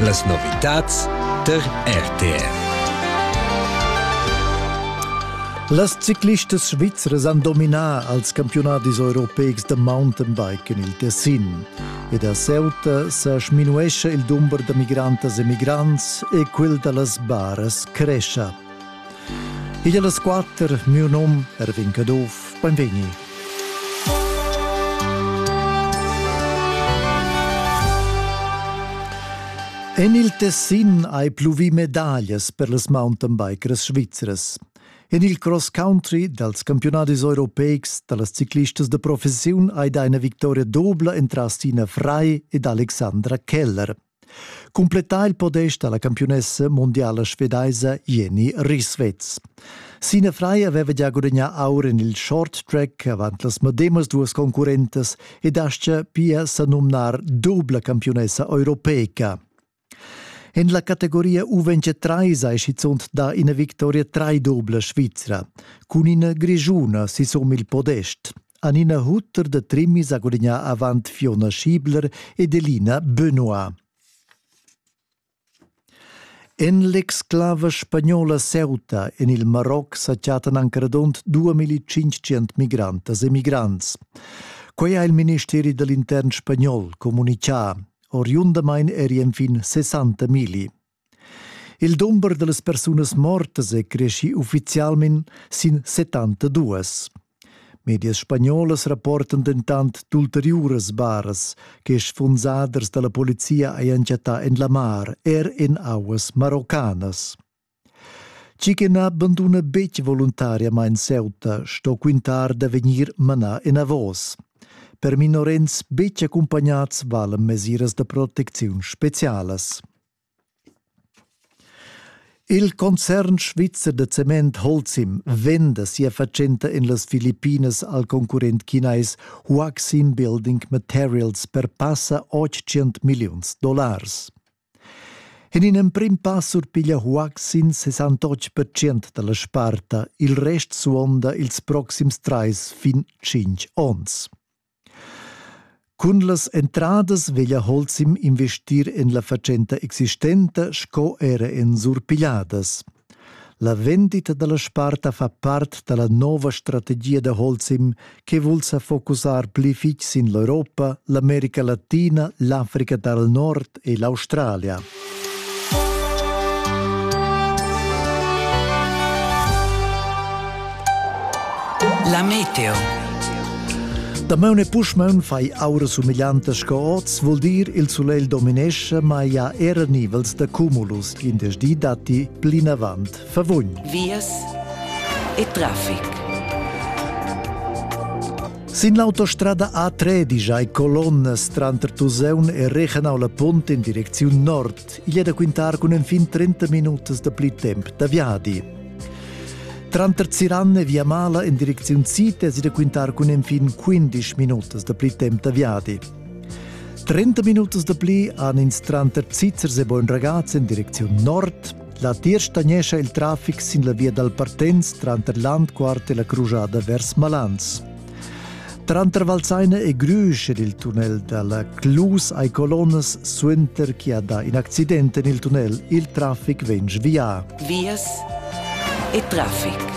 Las novitads der RTF. Las ciclistas svizras han dominà als campiunadis europeics da mountainbiken il Tessin ed a Ceuta sa sminuescha il dumber da migrantas e migrants e quel da las baras crescha. Igl las quater, miu nom Erwin Caduff, benvegni. En il Tessin hai pluvì medaglias per las mountain bikers svizras. En il cross country dals campionadis europeics da las ciclistas de professiun hai dà ina victoria dobla entras Tina Frei ed Alexandra Keller. Cumplettà il podest dalla campiunessa mundiala svedaisa Jenny Risvetz. Sina Frei aveva già gudagnà aur en il short track avant las medemas duas concurrentas ed aschia pia sa numnar dubla campiunessa europeica. En la categoria U23 è schizunt da ina victoria trai dubla svizra, cun ina grigiuna sisum il podest. han ina hutter da trimmis ha gudagnà avant Fiona Schiebler ed Elina Benoit. En l'exclava spagnola Ceuta en il Maroc sa chattan anc radund 2500 migrantas e migrants. Quai ha il ministeri dall'intern spagnol communitgà. Oriundamain eri enfin 60 migli. Il dumber dallas persunas mortas è creschì uffizialmain sin 72. Medias spagnolas rapportan dentant d'ulteriuras baras che sfunsaders da la polizia hajan chattà en la mar, er en auas maroccanas. Tgi che na banduna betg voluntariamain Ceuta sto quintar da vegnir manà enavos. Per minorens betg accumpagnads valan mesiras da protecziun specialas. Il concern svizzer da cement Holcim venda sia fatschenta en las Filippinas al concurrent chinais Huaxin Building Materials per passa 800 milliuns dollars. En in emprim pass surpiglia Huaxin 68% da la sparta, il rest suonda ils proxims trais fin tschintg onns. Cun las entradas veglia Holcim investir en la fatschenta existenta sco era en surpigliadas. La vendita dalla sparta fa part dalla nova strategia da Holcim che vul sa focusar pli fitg sin l'Europa, l'America Latina, l'Africa dal Nord e l'Australia. La meteo. Damaun e puschmaun fai aura sumiglianta sco oz, vuol dir il sulegl dominesce, ma ia era nivels da cumulus, in des di datti plinavant. Verwun Wies e Traffic. Sin l'autostrada A3 digiai colonnas tranter Tuseun e Rechenau la Punt in direcziun nord. Igl è da quintar cun enfin 30 minutas da pli temp da viadi. Tranter Ziran e Via Mala in direcziun Sid è da quintar cun enfin 15 minutas da pli temp da viadi. 30 minutas da pli han ins tranter Zitzers e Bogn Ragaz in direcziun nord, La dir stagnescha il traffic sin la via dal Partenz tranter Landquart e la crujada vers Malans. Tranter Valseine e Grüsch ed il tunnel dalla Clus ai colonnas suenter chi ha dà in accident en il tunnel, il traffic vegn svià. Vias e traffic.